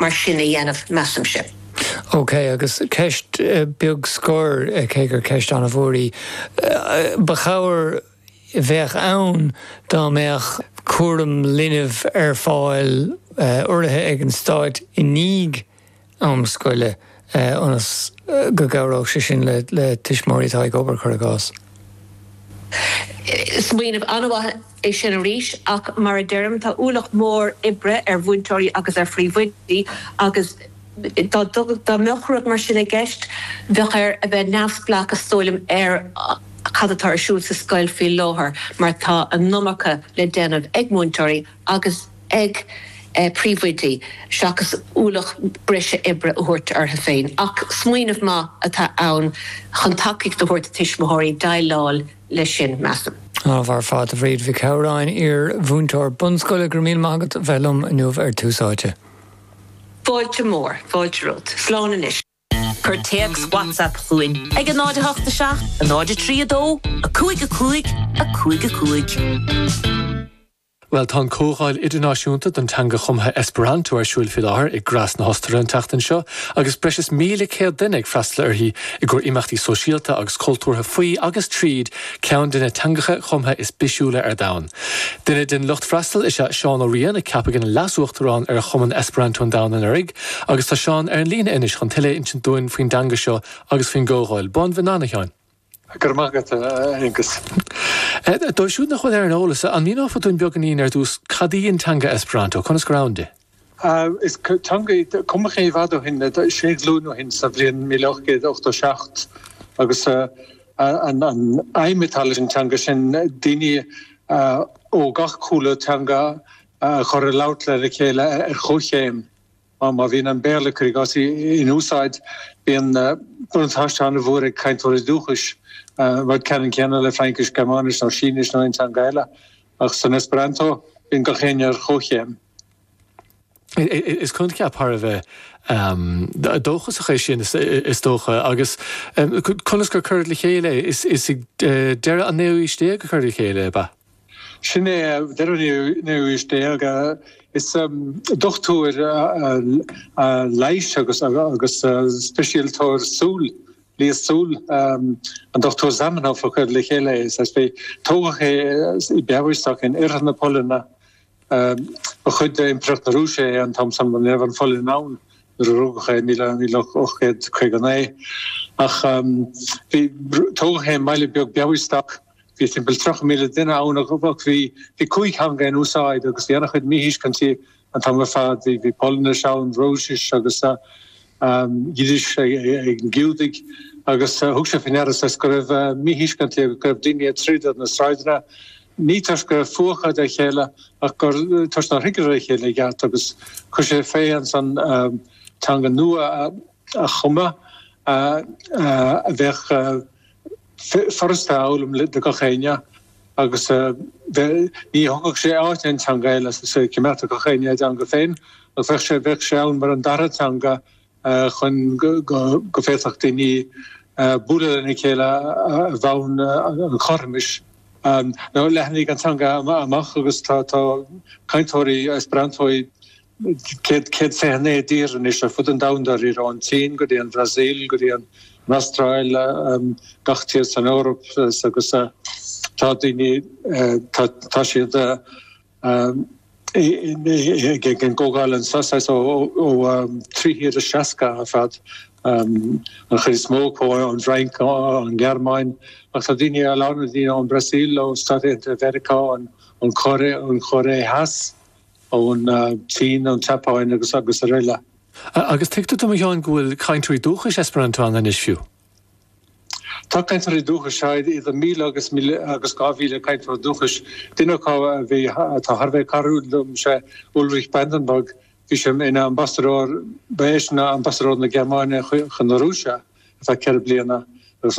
mar sin a dhéanamh, measaimse. OK, agus ceist beag scoir, cé gur ceist an-mhór í. An ba chabhair a bheadh ann dá mbeadh cúram linbh ar fáil urraithe ag an Stáit i ndiaidh am scoile. ionas go gcabhródh sé sin le tuismitheoirí atá ag obair, cuir i gcás. Smaoineamh an-mhaith é sin arís ach, mar a deirim, tá ualach mór oibre ar mhúinteoirí agus ar phríomhoidí agus dá mbeadh rud mar sin i gceist, bheadh air a bheith neamhspleách, is dóigh liom, ar cad atá ar siúl sa scoil faoi láthair mar tá an iomarca le déanamh ag múinteoirí. agus ag príomhoidí, seachas ualach breise oibre a thabhairt orthu féin, ach smaoineamh maith atá ann chun tacaíocht a thabhairt do thuismitheoirí déileáil leis sin, measaim. An-mhaith ar fad, a Bhríd Mhic Shamhráin, iar-mhúinteoir bunscoile, Go raibh míle maith agat as a bheith liom inniu ar Tús Áite. Fáilte mhór, fáilte romhat. Slán anois. Cuir téacs WhatsApp chugainn ag 087 032 5555. Bhuel, tá an comhdháil idirnáisiúnta don teanga chumtha Esperanto ar siúil faoi láthair i Graz na hOstaire an tseachtain seo agus breis is míle céad duine ag freastal uirthi i gcomhair imeachtaí sóisialta agus cultúrtha faoi agus tríd ceann de na teangacha cumtha is bisiúla ar domhan. Duine den lucht freastail is ea Seán Ó Riain a ceapadh ina leas-uachtarán ar Chumann Esperanto an Domhain anuraidh, Agus tá Seán ar an líne anois chun tuilleadh a insint dúinn faoin dteanga seo agus faoin gcomhdháil. Bonvenon, a Sheáin. Go raibh maith agat, a Aonghus. Dóibh siúd nach bhfuil ar an eolas, an míneofá dúinn beagáinín ar dtús cad í an teanga Esperanto? Conas gur ann di? Is teanga í a cumadh i bhfad ó shin, sé ghlúin ó shin, sa bhliain míle ocht gcéad ochtó seacht, agus an aidhm atá leis an teanga sin daoine ó gach cúlra teanga a chur ag labhairt lena chéile ar chomhchéim. Má bhíonn an Béarla, cuir i gcás, in úsáid, bíonn buntáiste an-mhór ag cainteoirí dúchais, an rud ceannann céanna le Fraincis, Gearmáinis nó Sínis nó aon teanga eile, ach san Esperanto bíonn gach éinne ar chomhchéim. Is coincheap thar a bheith dóchasach é sin, is dócha, agus conas gur cuireadh le chéile é? Is ag deireadh an naoú haois déag a cuireadh le chéile é, ab ea? Sin é deireadh an naoú haois déag. Is dochtúir leighis agus speisialtóir súl, leighis súl, an Dochtúir Zamenhof a chuir le chéile é. Tógadh é i Białystok in oirthear na Polainne. Ba chuid d'Impireacht na Rúise é an t-am san. Ní raibh an Pholainn ann nuair a rugadh é i míle ocht gcéad caoga a naoi, ach bhí, tógadh é i mbaile beag Białystok a bhí timpeall tríocha míle duine ann agus bhí, bhí cúig theanga in úsáid agus bhí an-chuid míthuiscintí an t-am ar fad, bhí, bhí Polainnis ann, Rúisis agus. Giúdais ag na Giúdaigh agus thug sé faoi ndeara go raibh míthuiscint go raibh daoine ag troid ar na sráideanna, ní toisc go raibh fuath acu dá chéile ach gur toisc nár thuigeadar a chéile i gceart agus chuir sé fé ansan teanga nua a chumadh a bheadh. furasta a fhoghlaim do gach éinne agus ní thógfadh sé áit aon teanga eile as an saol, chimeádfadh gach éinne a dteanga féin agus bheadh sé bheadh sé ann mar an dara teanga chun go bhféadfadh daoine bualadh lena chéile ar bhonn an chothromais. Leathnaigh an teanga amach agus tá cainteoirí Esperanto i céad fiche a naoi dtír anois ar fud an domhain dáiríre, ón tSín go dtí an Bhrasaíl go dtí an Astráil, gach tír san Eoraip agus tá daoine, tá siad ag an gcomhdháil anseo ó trí thír is seasca ar fad, an chuid is mó acu ón bhFrainc, ón nGearmáin ach tá daoine, a lán daoine ón mBrasaíl, ó Stáit Aontaithe Mheiriceá, ón Chóiré, ón Chóiré Theas. ón tSín, ón tSeapáin agus srl. Agus tuigtear dom, a Sheáin, go bhfuil cainteoirí dúchais Esperanto ann anois fiú? Tá cainteoirí dúchais, sea, idir míle agus míle agus dhá mhíle cainteoir dúchais. Duine acu a bhí, atá thar a bheith cairdiúil liom, sé Ulrich Brandenburg, bhí sé ina ambasadóir, ba eisean ambasadóir na Gearmáine chun na Rúise ar feadh ceithre bliana agus